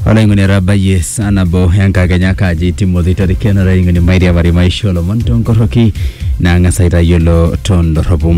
olaing'oni etabayie saa nabo enkakenya kaji timothy torikeno olaing'oni mairiamari maisha olomon tonkoroki naang'as aitayiolo tondorropu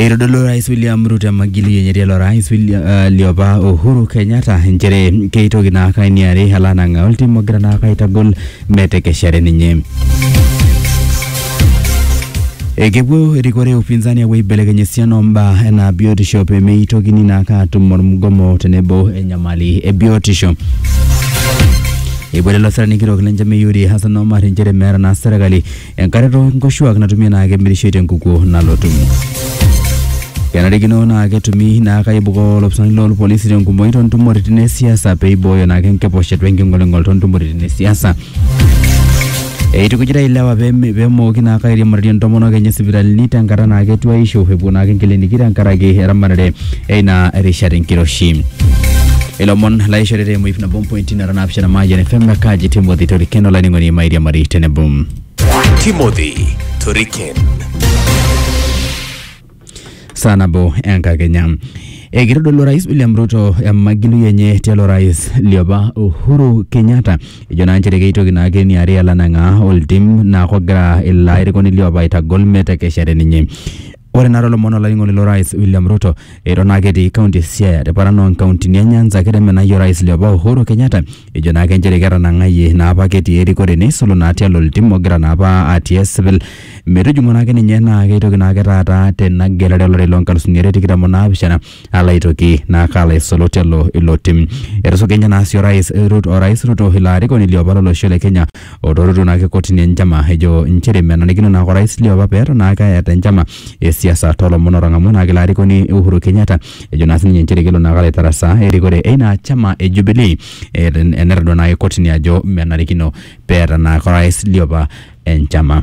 eitodolu orais william ruto emagili enye tialo orais William- eh, liopa uhuru kenyatta inchere keitoki naake ainiari alo anang'aa oltim ogira naake aitagol metekeshare ninye. Ekepuo erikore upinzani apuo aibelekeny esiana ombaa enaa biotisho pemeitokini naake atum ormugomo tenebo enyamali e biotisho. Eibore ilo sirani kitok le Njamii Yuri Hassan Omar inchere meeta naa serkali enkare too nkoshuak natumi enaa kemirishoi tenkukuo nalotu. Kenarikino naa ketumi naa kaibukoo olopisani loolpolisi tenkumoi too ntumoritin e siasa pee eibooyo naa ake enkiposhet we nking'oling'ol too ntumoritin e siasa. Eitukujita ilewa pee me- pee emooki naa kairiamarie intomonok enye sipitalini tenkata naa ketuaisho epuo naa ake inkiliniki tenkaraki eramatare eina rishata enkiroshi. Ilomon laishoritae emoip nabo mpointi naapishana maayian fm kaji timothy torikeno laining'oni mairia mari tenebo Timothy Toriken. saa nabo enkakenya ekitodolu orais william ruto emagilui enye tialo rais liopa uhuru kenyatta ejo naa nchere keitoki naake niare alanang'aa oltim naa kogira ilo airukoni liopa aitagol metekeshare ninye Ore naa tolomon olainining'oni lo rais William Ruto eton naake etii kaunti e Siaya te paran o nkauntini e Nyanza kete menai orais liopa Uhuru Kenyatta ejo naake njere ketanang'ayie naa apa ake etii erikore neisul naa tialo oltim ogira naa apa atii esipil metujung'o naake ninye naake itoki naake taata tena gelare olari loo nkalusuni are tikitam o naapishana. alo aitoki naa kaalo aisulu telo ilo tim. Etusuja ninye naa sii orais Ruto, orais Ruto ilo arikoni liopa lo losho le Kenya otoruto naake kotini enchama ejo inchere menarikino naake orais liopa peton naake eeta enchama e siasa too lomon otang'amua naake ilo arikoni Uhuru Kenyatta ejo naa sininye inchere kelo naake alo aitarasaa erikore eina chama e Jubilee etodua naake kotini ajo menarikino peeta naake orais liopa enchama.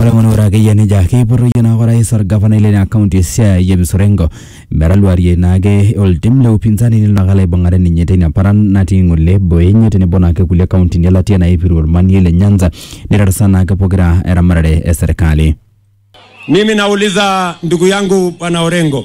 Ore ng'ono ore akeyie nejia keipotoyie naake orais orgavanai leina kaunti e Siaya James Orengo metaluarie naake oltim le upinzani nelo naake alo aibung'are ninye teina paran natii ng'ole boo enye tenebo naake kulie kauntini e latia naipiru ormanie le Nyanza neirarsaa naake pokira eramatare e serikali. Mimi nauliza ndugu yangu bwana Orengo,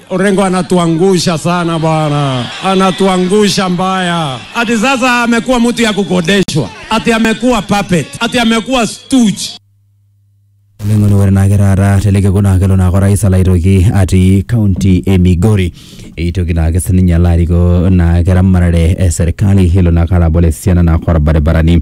Orengo anatuangusha sana bwana, anatuangusha mbaya. Ati sasa amekuwa mtu ya kukodeshwa, ati amekuwa puppet, ati amekuwa stooge. oleng'oni ore naake taata tele kekun naa kelo naake orais alo aitoki atii kaunti e migori eitoki naake sininye alo arikoo naake ramatare e serkali elo naake alo abol esiana naake orbaribarani